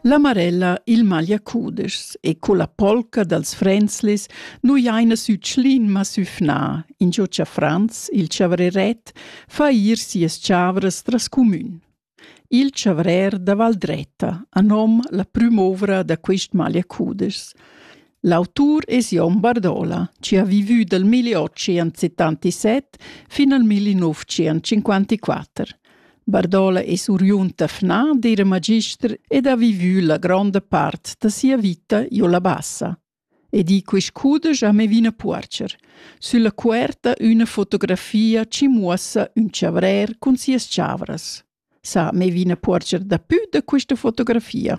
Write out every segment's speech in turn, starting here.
La Marella, il Magliacudeschs e colla polca dals Frenzlis nu jaina sü Tschlin ma sü Fna, ingio cha Franz, il chavreret, fa ir sias chavras tras cumün. Il chavrer da Valdretta ha nom la prüm'ouvra da quist Magliacudeschs. L'autur es Jon Bardola, chi ha vivü dal 1877 fin al 1954. Bardola es uriunta fna d'eira magister ed ha vivü la gronda part da sia vita io la Bassa. E di quist cudesch a Mevina Puorcher. Sülla cuerta üna fotografia ci muossa ün chavrer cun sias chavras. Sa Mevina Puorcher dapü da quista fotografia?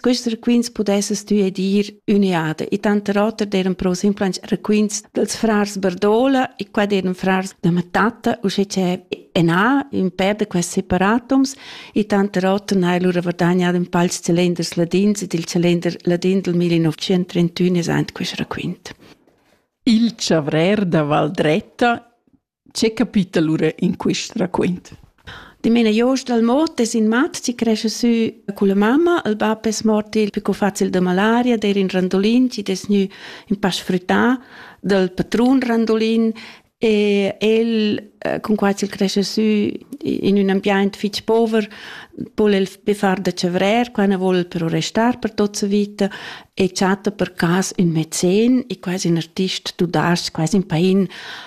Quist requints pudesses tü edir üniada e tanter oter d'eran pro simplans requints dels frars Berdola e qua d'eran frars da Matatta, usche c'è Ena, ün pèr da quest separatums, e tanter oter n'ha lura verdagnat ün pals celenders ladins ed il celender ladin del 1931 es ant quist requint. Il chavrer da Valdretta Che capitel lura in quist raquint? Dimena Jost dal mot es in mat chi crescha sü culla mamma. Il bap es mort il più facil da malaria, d'eir in randulin chi'd es gnü ün pa sfrüttà dal patrun randulin e el eh, cun quai ch'el crescha sü in ün ambiaint fich pover voul el be far da chavrer, qua na voul el però restar per tot sa vita e chatta per cas ün mezzen e quasi ün artist du das quasi ün pain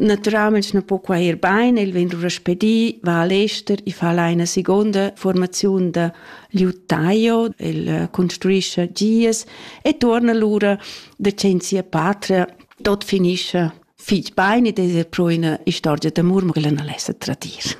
Naturalmeins non po quai ir bein, el vegn lura spedì, va al ester e fa là ina seconda formaziun da liuttaio, el eh, construisce gies e torna lura decenzi a patria, tot finisce fich bein ed es er pro üna istorgia d'amur, ma quella non l'esa tradir.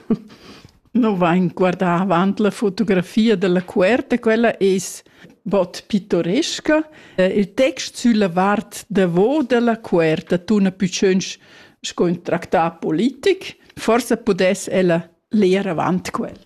No vain guardà avant la fotografia della cuerta, quella es bod pittoresca. Il text sülla vart davo della cuerta tuna pü tschönch sco ün tractat politic. Forsa pudess ella leer avant quel.